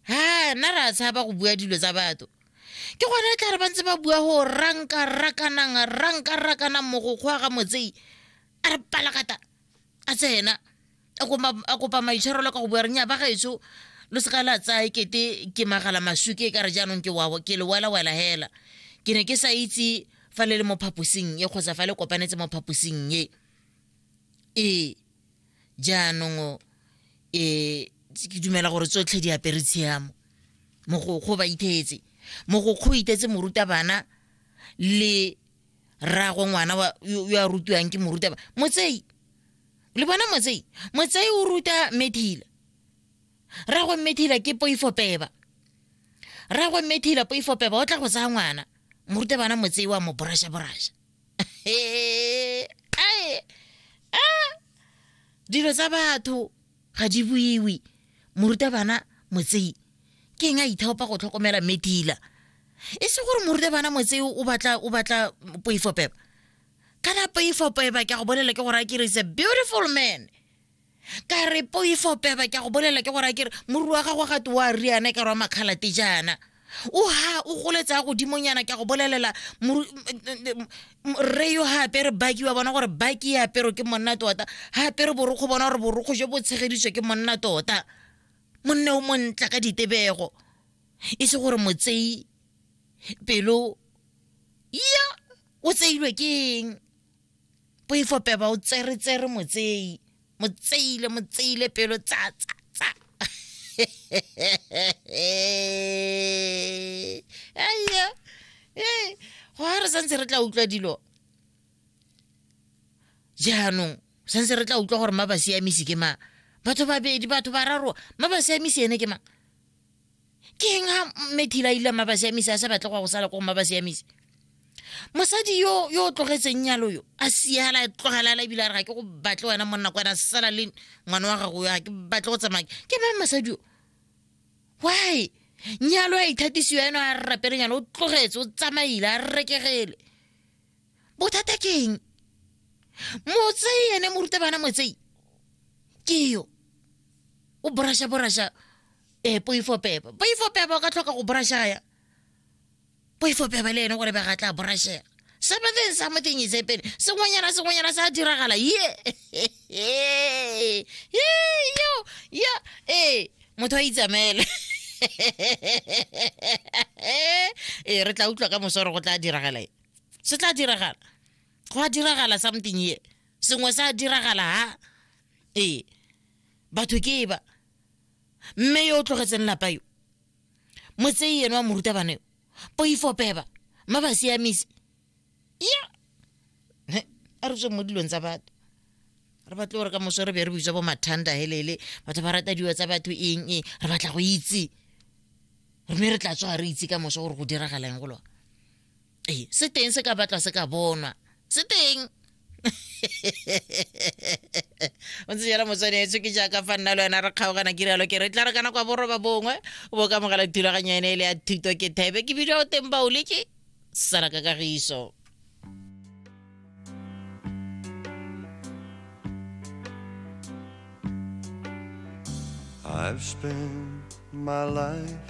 ha nna re a tshaba go bua dilo tsa batho ke gone e tla re ba ntse ba bua go ranka rakanang ranka rakanang mogokgwa ga motsei a re palakata a tsena a kopa maitshwarelo ka go bua re nya ba gaetsho lo seka la tsaya kete ke magala masuke ka re jaanong ke wabo ke lewelawela hela ke ne ke sa itse fa le le mo phaposing e kgotsa fa le kopanetse mo phaposing e ee jaanong um ke dumela gore tsotlhe di apere tshiamo mogokgo ba ithetse mogokgo o itetse morutabana le rrago ngwana yo a rutiwang ke morutaba motsei le bona motsei motsei o ruta methila rrago methila ke poifo peba rrago methila poifo peba o tla go tsaya ngwana morutabana motsei wa mo borasha borasha dilo tsa batho ga di buiwe morutabana motsei ke eng a ithaopa go tlhokomela medila e se gore morutabana motsei o batla o batla poifo peba kana poifo peba ke a go bolela ke gore a kere is a beautiful man ka re poifo peba ke a go bolela ke gore a kere moruri wa gago gate wa riana ka rwa makgalate jaana o ha o goletsa godimonyana ke a go bolelela rre yo ga apere baki wa bona gore baki e apero ke monna tota ga apere borokgo bona gore borokgo jo bo tshegeditswe ke monna tota monne o montla ka ditebego e se gore motseyi pelo ya o tseilwe ke eng poifo peba o tsere tsere motseyi motseyile motseyile pelo tsa tsa tsa aya ee go ha re santse re tla utlwa dilo jaanong santse re tla utlwa gore ma ba siamisi ke mang batho babedi batho bararo ma ba siamisi ene ke mang ke eng a mme thila a ile a maba siamisa a sa batle go ya go sala ko go maba siamisa mosadi yo yo o tlogetseng nyalo yo a siala tlogelala ebile a re ga ke go batle wena monna ko wena sala le ngwana wa gago ya ke batle go tsamaya ke mang mosadi yo why nyalo a ithatisiwa eno a rapele nyalo o tlogetse o tsamaile a rekegele bothata ke eng motsei ene morutabana motsei ke yo o borasha borasha ee poifo peba poifo peba o ka tlhoka go borashaya poifo peba le ene gore bega tla borashega something something is happening sengwenyana sengwenyana sa diragala ye yo yo ee motho a itsamele ee re tla utlwa ka mosoro go tla diragala e se tla diragala go a diragala something ye sengwe sa diragala ha ee batho ke e ba mme yo o tlogetseng lapa yo motsei eno wa morutabana yo poifopeba ma ba siamisi ya a re tswe mo dilong tsa batho re batle gore ka moso re be re bitswa bo mathanda helele batho ba rata diwa tsa batho eng e re batla go itse mme re tla tswa re itse ka moso gore go diragalang go lona ee se teng se ka batla se ka bonwa se teng o ntse jalo motswanetso ke jaaka fa nna le wena re kgaogana ke rialo ke re tla re kana kwa boroba bongwe o bo ka mogala thulaganyo ene e le ya thuto ke thebe ke bidio o teng baole ke sala ka kagiso I've spent my life